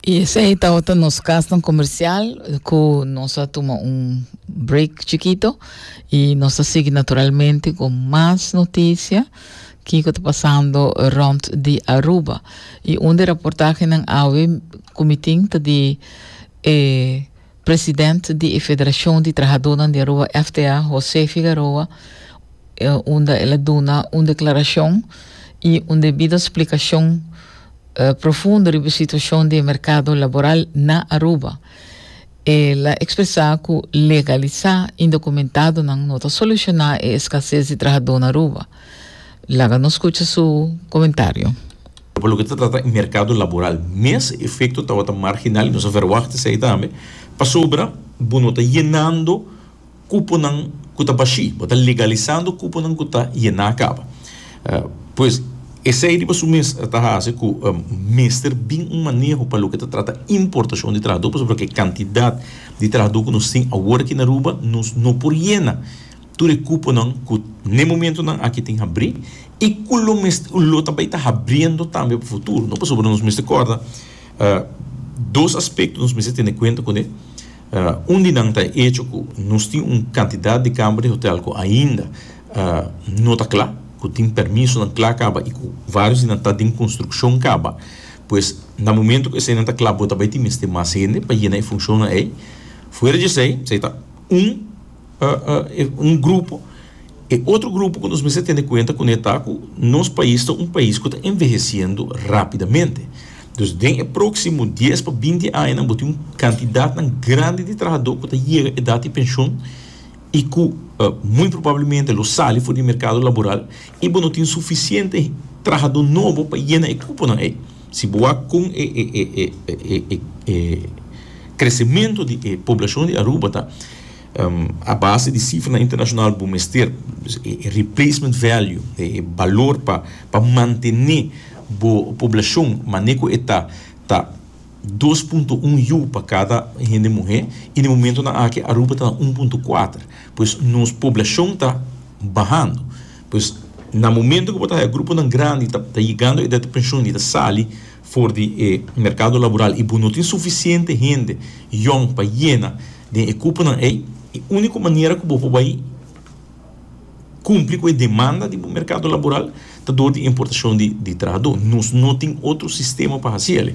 Y esey tawata nos kasnan comercial cu nos a tuma un break chiquito y nos a sigui naturalmente con mas noticia kiko ta pasando rond di Aruba. Y un di reportagenan awe cumitin ta di eh, President di e Federashon di Trahadónan di Aruba, FTA, José Figaroa, unda el a duna un deklarashon i un debido splikashon profundo riba e situashon di e merkado laboral na Aruba. El a ekspresá ku legalisá indokumentadonan no ta solushoná e eskasés di trahadó na Aruba. Laga nos scucha su comentario. Pa loke ta trata e mercado laboral mes e efecto tabata marginal y nos a verwacht esey tambe pasobra bo no ta yenando cuponan cu ta bashi bo ta legalizando cuponan cu ta yena caba pues esey riba su mes ta haci cu mester bin un maneho pa loke ta trata importacion di trahador pasobra cu e cantidad di trahador cu nos tin awor aki na Aruba nos no por yena Tur e cuponan cu n'e momentonan aki tin habrí i cu lo mester cu lo ta bay ta habriendo tambe pa futuro, no? Pasobra nos mester corda dos aspecto nos mester tene cuenta cu ne. Un di nan ta e hecho cu nos tin un cantidad di cama di hotel cu ainda no ta cla, cu tin permisonan cla caba i cu varios di nan ta den construccion caba. Pues, na momento cu eseinan ta cla bo ta bay tin mester mas hende pa yena e funcionnan ei. Fuera di esei, esei ta un. un grupo e otro grupo cu nos mester tene cuenta cune ta cu nos pais ta un pais cu ta enveheciendo rapidamente dus den e proximo dies pa binti añanan bo tin un cantidadnan grandi di trahador cu ta yega edad di pension y cu muy probablemente lo sali for di mercado laboral y bo no tin suficiente trahador nobo pa yena e cuponan ey si bo wak con e e e e crecemento di e poblacion di Aruba ta. A base di sifranan internashonal bo mester e replacement value, e balor pa pa mantené bo poblashon mané ku e ta, ta dos punto un yu pa kada hende muhé i den momentunan aki Aruba ta na un punto kuater. Pues nos poblashon ta bahando. Pues na momentu ku bo ta haña gruponan grandi ta yegando e edad di penshon i ta sali. For di e merkado laboral i bo no tin sufisiente hende yòn pa yena den e kuponan ei, e úniko manera ku bo por bai kumpli ku e demanda di bo merkado laboral ta dor di importashon di trahadó. Nos no tin otro sistema pa hasi el'e.